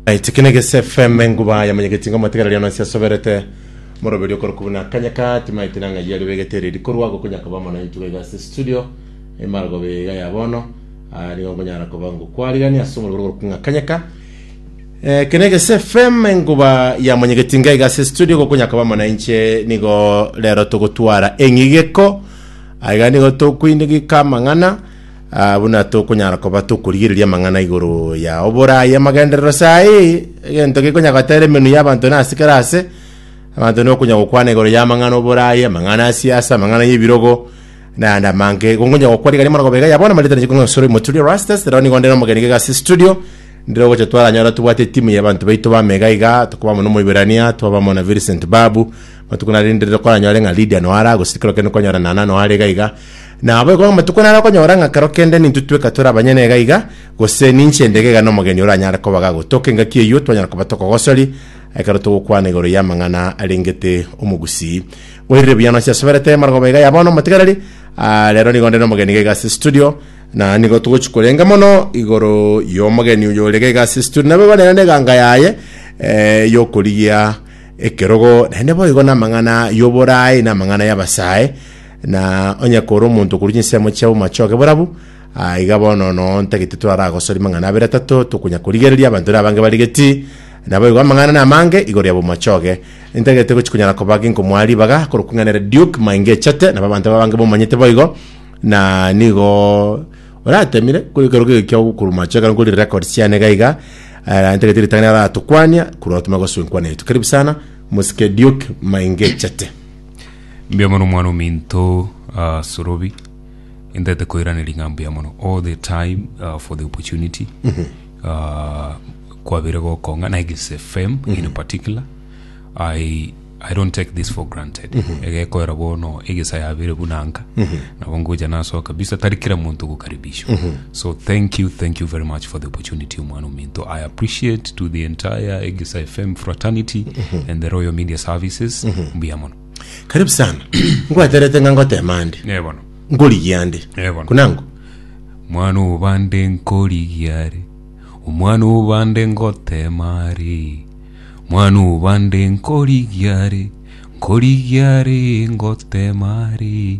aitikine gese fm enguba yamanyegeti ngo matigara riano ase asoberete moroberi okoroku buna kanyaka timaiti na ng'ai yari begete riri korwa gokonyaka ba mono intuga iga ase studio emargo bega ya bono Ah, nigo nkonyara koba ngo kwarigani ase omoroberi okoroku ng'a kanyaka Eh, kene gese fm enguba ya manyegeti ngai gase studio gokonyaka ba mono inche nigo rero togotwara eng'igeko aiga nigo tokwinigika amang'ana Aa buna tokonyara koba tokorigereria amang'ana igoro ya oboraai amagenderero saa eye, egento gekonya goteera emenwa y'abanto nase kera aase, abanto nokonya gokwana igoro y'amang'ana oboraai, amang'ana ya siasa, amang'ana y'ebirogo, na ayande amange. Igo nkonya gokwa rigari amara gobega ya bono amarita nigo nsore moturia Rastus, rero nigo ndere omogeni iga ase studio, ndire ogocha twaranyore tobwate etimu y'abanto baito bame iga iga, tokoba amo na Omoibirania, twaba amo na Vincent Babu, matuko narinderire koranyore ng'a Lydia noyo ara, gose tikero kende kwanyorana nana noyo are iga iga. Na abo igo amatuko naro okonyora ng'a kero kende nintwe tweka tore abanyene iga iga, gose ninche ndege iga nomogeni oranyare koba gagotoka engaki eyio, twanyara koba tokogosori ekero togokwana igoro y'amang'ana arengete omogusii. Oirire buya nonsi asoberete marogoba iga ya bono omotigareri, ah, rero nigo onde nomogeni iga iga ase estudio, na nigo togochi korenga mono igoro y'omogeni oyo ore iga iga ase estudio, nabo igo nere neganga yaye eh, y'okorigia ekerogo, naende boigo namang'ana y'oboraai, namang'ana y'abasae, Na onye kore omonto okorua chinsemo chiabo machoge borabu, aiga bono no ntagete twaragosoria mang'ana abere atato tokonyakorigereria abanto ere abange barigeti, naboigo amang'ana namange igoro yabo machoge. Ntagete gochi konyara koba ginko mwa ribaga korokwa ing'ana ere Duke mainge echete, nabo abanto babange bomanyete boigo, na nigo oratemire kore ekero kege kia okorwa machoge ekero nkorire records chiane iga iga, eh, ntagete ritang'ani aratokwania korwa otome gosoa enkwana yaito. Karibu sana, Mosike Duke mainge echete. Mbuya mono mwana ominto uh, Sorobi intete koiraneria ng'a mbuya mono all the time uh, for the opportunity uh, kwabire gokong'a na Egis FM in particular I, I don't take this for granted egekoera bono egesa yabire bunanka nabo ngocha nasoa kabisa tari kila muntu gokaribishwa So thank you, thank you very much for the opportunity omwana ominto. I appreciate to the entire Egesa FM fraternity mm-hmm. and the Royal Media Services. Mm-hmm. Mbuya mono. Karibu sana. Ngwaterete nga ngotema ande. Ne bono. Ngorigia ande. Ne bono. Kunangu. Mwana obande nkorigia are. Omwana obande ngotema are. Mwana obande nkorigia are. Nkorigia are ngotema are.